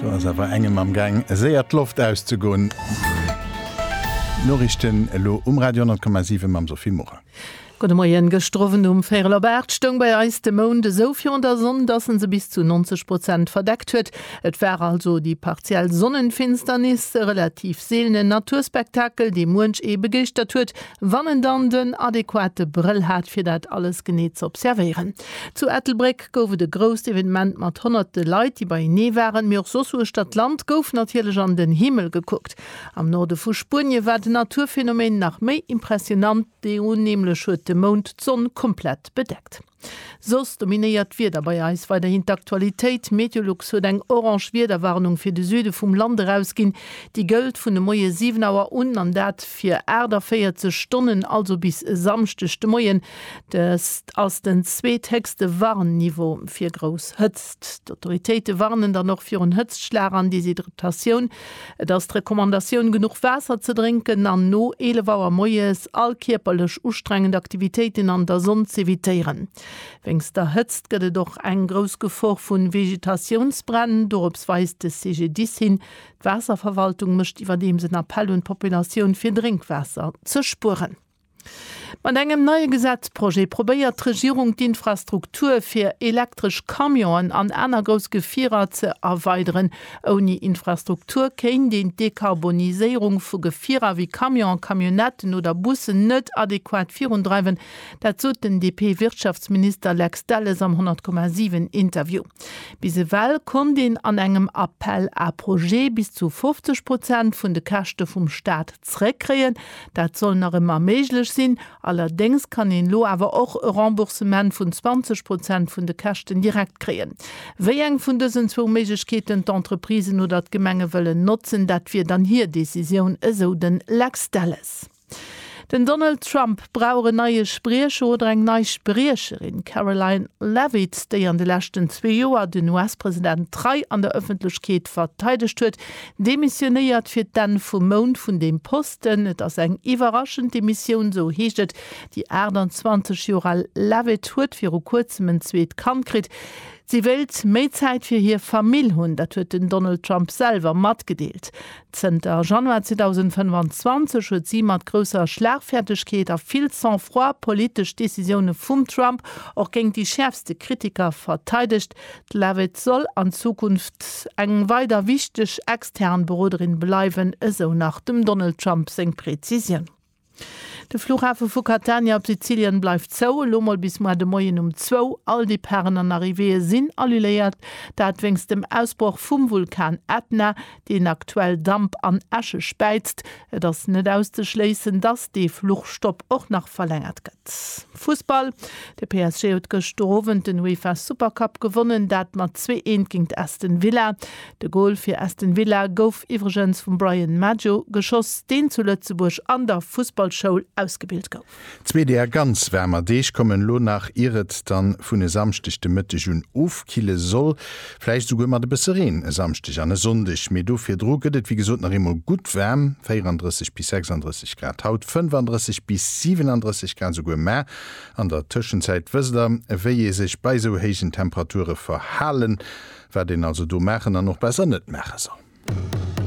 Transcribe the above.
Do ass awer engem am Gaang séier d'Loft auszegoen. D'Noriichten elo um Radio 10,7 mam Sophie Morang. Gudde Moien. Gëschter Owend um véierel op aacht stoung bei eis de Mound esou virun der Sonn, dass en se bis zu 90 Prozent verdeckt huet. Et war also déi partiell Sonnenfinsternis, e relativ seelenen Naturspektakel, dee muench ee begeeschtert huet, wann en dann den adequate Brëll hat, fir dat alles genee z'observéieren. Zu Ettelbréck. Park gouf et e grousst Evenement mat honnerte Leit, déi beienee waren, mee och soss uechter d'Land gouf natierlech an den Himmel gekuckt. Am Norde vu Spuenie war den Naturphänomen nach méi impressionant, do nämlech huet de Mound d'Sonn komplett bedeckt. Soss dominéiert d'Wieder bei eis weiderhin d'Aktualitéit. Meteolux huet eng orange Wiederwarnung fir de Süde vum Land erausginn. Déi gëllt vun de Moie 7 Auer un an dat fir 48 Stonnen, also bis e Samschdeg de Moien. D'Hëtzt ass den zweethéchste Warnniveau fir grouss Hëtzt. D'Autoritéite warnen dann och virun Hëtztschlag an Deshydratatioun. Et ass d'Recommandatioun, genuch Waasser ze drénken an no 11 Auer moies all kierperlech ustrengend Aktivitéiten an der Sonn z'evitéieren. Wéinst der Hëtzt gëtt et och eng grouss Gefor vu Vegetatiounsbränn. Dorops weist de CGDIS hin. D'Waasserverwaltung mécht iwwerdeems en Appell un d'Populatioun, fir Drénkwaasser ze spueren. Mat engem neie Gesetzprojet probéiert d'Regierung d'Infrastruktur fir elektresch Camionen an aner grouss Gefierer ze erweideren. Ouni Infrastruktur kéint een d'Dekarboniséierung vu Gefierer wéi Camionen, Camionnetten oder Bussen net adequat virundreiwen. Dat sot den DP-Wirtschaftsminister Lex Delles am 100,7 Interview. Bis ewell konnt een an engem Appel à projets bis zu 50 Prozent vun de Käschte vum Staat Zréckkréien. Dat soll nach ëmmer méiglech sinn, allerdéngs kann een elo awer och e Remboursement vun 20 Prozent vun de Käschten direkt kréien. Wéi eng vun dësen zwou Méiglechkeeten d'Entreprisen oder d'Gemenge wëllen notzen, dat wier dann hir Decisioun, esou de Lex Delles. Den Donald Trump brauch en neie Spriecher oder eng nei Spriecherin. D'Karoline Leavitt, déi an de leschten zwee Joer den US-President trei an der Ëffentlechkeet verteidegt huet, Demissionéiert fir d'Enn vum Mount vun deem Posten. Et ass eng iwwerraschend Demissioun, sou heescht et. Déi 28 Joer al Leavitt huet viru kuerzem en zweet Kand kritt. Si wéilt méi Zäit fir hir Famill hunn. Dat huet den Donald Trump selwer matgedeelt. Zënter Januar 2025 huet si mat grousser Schlagfäertegkeet a vill Sang-froid politesch Decisioune vum Trump och géint déi schäerfste Kritiker verteidegt. D'Leavitt soll an Zukunft eng weider wichteg extern Beroderin bleiwen, esou nach dem Donald Trump seng Prezisioun. De Fluchhafe vu Catania op Sizilien bleift zou, elo mol bis moar de Moien um zwou. All Departen an Arrivéeë sinn alluléiert, dat wéinst dem Ausbroch vum Vulkan Ätna, deen aktuell Damp an Äsche späizt. Et ass net auszeschléissen, dass dee Fluchstopp och nach verlängert gëtt. Fussball, De PSG huet gëschter Owend den UEFA Super Cup gewonnen, dat mat zwee Eent géint Aston Villa. De Gol fir Aston Villa gouf iwwregens vum Bryan Maggio geschoss, deen zu Lëtzebuerg an der Fussballschoul ausgebilt gouf. Zwee deer ganz waarmer Deeg kommen elo nach, ier et dann vun e Samschdeg de Mëtteg un ofkille soll. Vläicht esouguer mat e bësse Reen e Samschdeg an e Sonndeg, mee do virdru gëtt et wéi gesot nach eemol gutt waarm, 34 bis 36 Grad haut, 35 bis 37 Grad esouguer mar. An der Tëschenzäit wësst der, wéi ee sech bei esou héijen Temperature verhalen, wat een also do maachen an och besser net maache soll.